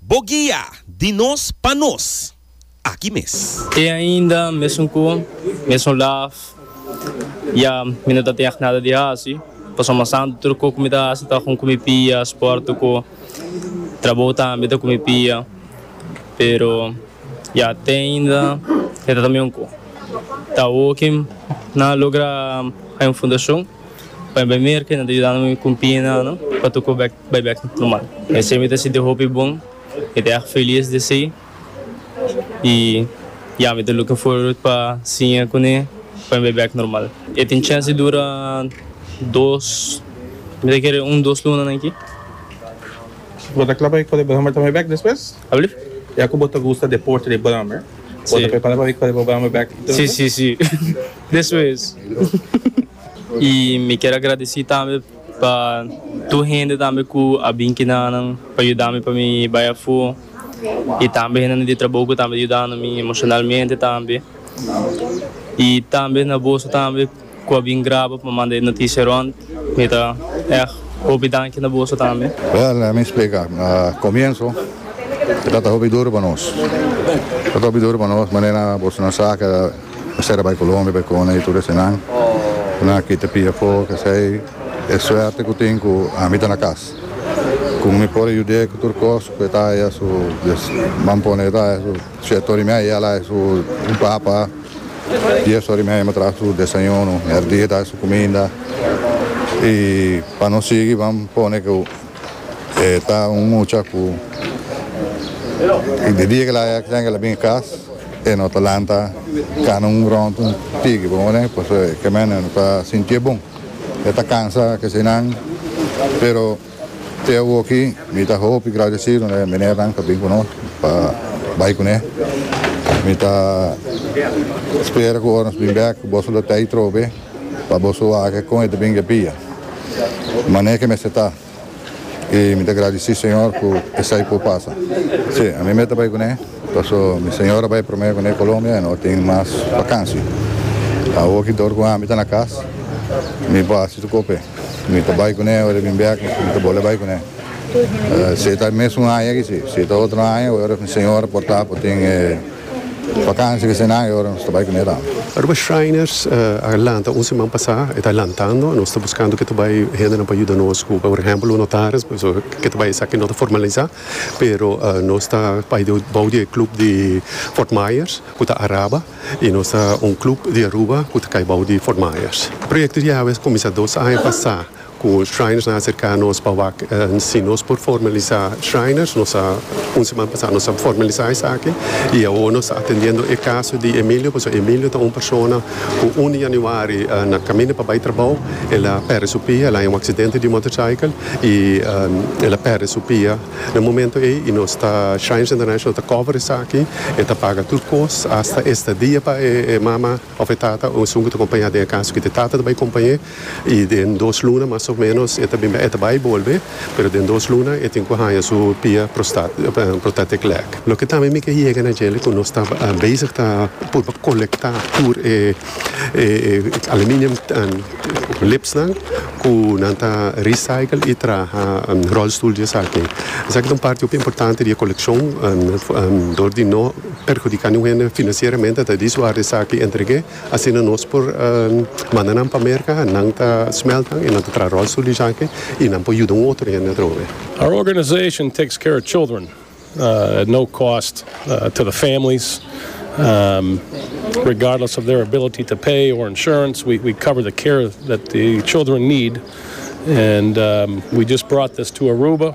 Bo guia di nos pa nos aki mes. Te ainda mesun cu mesun laf ya mi no ta teg nada di haci pasobra mas anto tur cu cu mi ta haci ta con cu mi pia sport tucu trabou tambe ta cu mi pia pero ya te ainda e ta ta miun cu ta hoki nan a logra hay un fundacion. P'e primer kende ta yudando mi kumpi na ano pa tuku bek bai bek normal esei mi ta sinti hopi bon mi ta erg felis di esei i ya mi ta looking forward pa siña kuné pa mi bai bek normal e tin chèns di dura dos mi ta kere un dos lunanan aki. Bo ta kla pa bai kore Brummer tambe bek despues? Alblief? Ya ku bo ta gusta deporte di Brummer bo ta prepara pa bai kore bo Brummer bek i tur? Si si si. Eso es. Y mi kier agradeci tambe pa tur hende tambe cu a bin kina nan pa yuda mi pa mi bay afo y tambe hendenan di trabou cu tambe yudando mi emocionalmente tambe. Y tambe na boso tambe cu a bin graba pa manda e noticia rond. Mi ta echt hopi danki na boso tambe. Well, lemme mi splica. Na comienso e tabata hopi duru pa nos. Tabata hopi duru pa nos manera bosonan sa. Esei ta bai Colombia bai kona y tur esenan. Ku nan a kita pia afó. Esei e suerte ku tin ku ami ta na kas. Ku mi por a yud'é ku tur kos ku e ta haya su, ban pone e ta haya su siete ora y mei, e al haya su un papa. Dies ora y mei mi a traha su desayuno. Merdía e ta haya su kuminda. Y pa no sigui ban pone ku. E ta un mucha cu di dia que laya tenga la bini cas e no ta lanta cana un rond un tigi pa moda pasobra e caminda no ta sinti'e bon e ta cansa kesenan pero te awoki mi ta hopi gradecido na e menernan pa bin cu nos pa bay cune mi ta spera cu ora nos bin bek boso lo ta ayi trobe. Pa boso wak kon e ta bin gepia. Mane ke mester ta. I mi ta gradisí Señor ku esei por pasa. Sí, ami mester bai kuné paso mi señora bai promé kuné Colombia i no tin mas bakansi. Awor ki dor ku ami ta na kas mi por hasi su kope. Mi ta bai kuné ora e bin bèk mi ta bole bai kuné. Si e ta e mes un aña aki si, si e ta otro aña ora mi señora por ta por tin e. Vakansia di senan e ora nos ta bai ku Miran. Aruba Shriners a lanta un siman pasá, e ta lantando. Nos ta buskando ke ta bai hendenan pa yuda nos ku por ehèmpel un notaris, pasobra ke ta bai esaki no ta formalisá, pero nos ta bai bou di e klup di Fort Myers ku ta Araba i nos ta un klup di Aruba ku ta kai bou di Fort Myers. E proyekto di Yahweh a kuminsá dos aña pasá. Cu Shriners na acerca nos pa wak si nos por formalisa Shriners. Nos a, un seman pasa nos a formalisa esaki y awo nos ta atendiendo e caso di Emilio, pasobra Emilio ta un persona cu un di januari na caminda pa bay trabao el a perde su pia, el a haña un accidente di motorcycle y el a perde su pia na momento ey y nos ta, Shriners International ta cover esaki, e ta paga tur cos, hasta estadia pa e mama. Òf e tata o esun ku ta kompañá den e kas ku e tata ta bai kompañ'é i den dos luna mas o ménos e ta bin bai. E ta bai bolbe, pero den dos luna e tin ku haña su pia prostat protetic leg. Loke tambe mi ke yega na djele ku nos ta bezig ta purba kolektá tur e aluminium lipsnan ku nan ta recycle i traha rolstoel di esaki. Esaki ta un parti hopi importante di e kolekshon dor di no. perhudiká niun hende finansieramente ta di su área esaki entreg'é, asina nos por manda nan pa Merka, nan ta smèltnan i nan ta traha ròlstul di esaki i nan por yuda un otro hende atrobe. Our organization takes care of children at no cost to the families, regardless of their ability to pay or insurance, we we cover the care that the children need and we just brought this to Aruba.